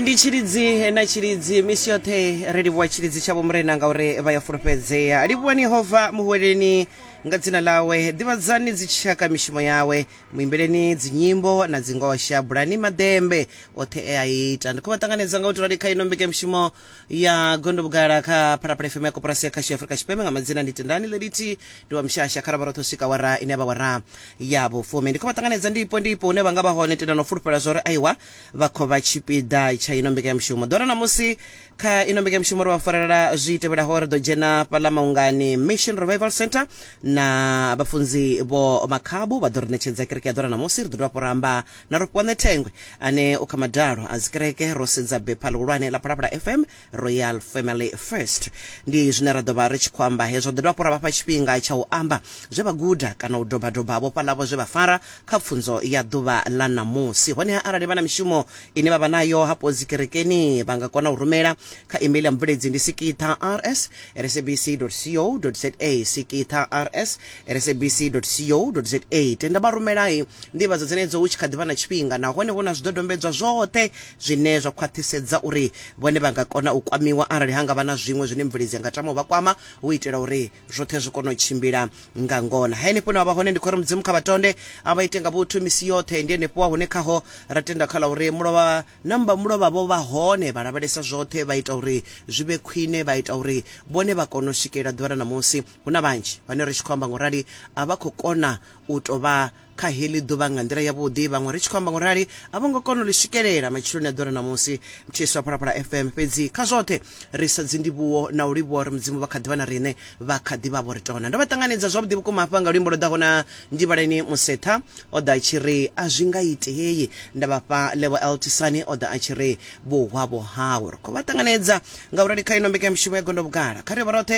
ndi tshilidzi na tshilidzi misi yoṱhe ri livhuwa tshilidzi tshavho murena ngauri vha ya fulufhedzea livhuwani yehova muhweleni nga dzina ḽawe ḓivhadzani dzitshaka mishumo yawe muimbeleni dzinyimbo na dzingosha bulani madembe oṱhe e a ita ndi khou vha ṱanganedza nga u tirali kha ino mbekemushumo ya gondo vhugala kha phalaphala fm ya koporasi ya khashi afurika tshipembe nga madzina ndi tendani ḽelithi ndi wa mshasha kha ravharotho swika wara ine ya vha wara ya vhufumi ndi khou vha ṱanganedza ndipo ndipo hune vha nga vha hone tenda no fulufhela zwa uri aiwa vha khou vha tshipiḓa tsha ino mbekanyamushumo ḓora na musi kha ino mbekanyamushumo ri vha farela zwi tevhelaho ri ḓo dzhena fhaḽa maungani mission revival center na vhafunzi vho makhabu vha ḓo ri ṋetshedza kereke ya ḓora na musi ri ḓo dovha hafhu ra amba Na Rofhiwane Thengwe ane u kha madalo a dzikereke, ro sedza bepha ḽihulwane ḽa Phalaphala FM, Royal Family First. Ndi zwine ra ḓo vha ri tshi khou amba hezwo. Ḓo dovha hafhu ra vha fha tshifhinga tsha u amba zwe vha guda kana u doba-doba vhofha ḽavho zwe vha fara kha pfunzo ya ḓuvha ḽa ṋamusi. Honeha arali vha na mishumo ine vha vha nayo hafho dzikerekeni, vha nga kona u rumela kha email ya mubveledzi ndi sikitha rs at sabc.co.za, sikitha rs sabc.co.za. Tenda vha rumela nḓivhadzo dzenedzo hu tshi kha ḓi vha na tshifhinga nahone vho na zwidodombedzwa zwoṱhe zwine zwa khwaṱhisedza uri vhone vha nga kona u kwamiwa arali ha nga vha na zwiṅwe zwine mubveledzi a nga tama u vha kwama u itela uri zwoṱhe zwi kone u tshimbila nga ngona. Henefho hune vha vha hone ndi khou ri Mudzimu kha vha tonde a vha ite nga vhuthu misi yoṱhe. Ndi henefho hune khaho ra tenda kha ḽa uri mulovha namba mulovha vho vha hone vha lavhelesa zwoṱhe vha ita uri zwi vhe khwine vha ita uri vhone vha kone u swikelela ḓuvha ḽa ṋamusi. hu na vhanzhi vhane ri tshi khou amba ngorali a vha khou kona u tou vha kha heḽi ḓuvha nga nḓila yavhuḓi vhaṅwe ri tshi khou amba ngorali a vho ngo kona u ḽi swikelela matshiloni a ḓora na musi mthiswa phalaphala fm fhedzi kha zwoṱhe ri sa dzindivhuwo na u livhuwa uri mudzimu vha kha ḓivha na riṋe vha kha ḓivha vho ri tona ndo vha ṱanganedza zwavhuḓi vhukuma hafha nga luimbo lwo ḓaho na ndivhaleni musetha o ḓa a tshi ri a zwi nga itei nda vhafha levo eltisani o ḓa a tshi ri vhuhwavho hawe ri khou vha ṱanganedza nga u rali kha ino mbekanyamushumo ya gondo vhugala kha ri vha roṱhe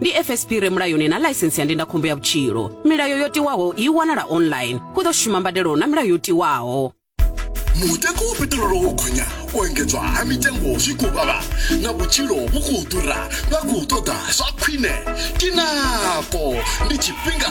ndi fsp re mulayoni na ḽaisensi ya ndindakhombo ya vhutshilo milayo yo tiwaho i wanala online hu ḓo shuma mbadelo na milayo yo tiwaho mutengo wa peṱirolo wo gonya u engedzwa ha mitengo zwi khou vhavha na vhutshilo vhu khou ḓura vha khou ṱoḓa zwa khwine tinako ndi tshifhinga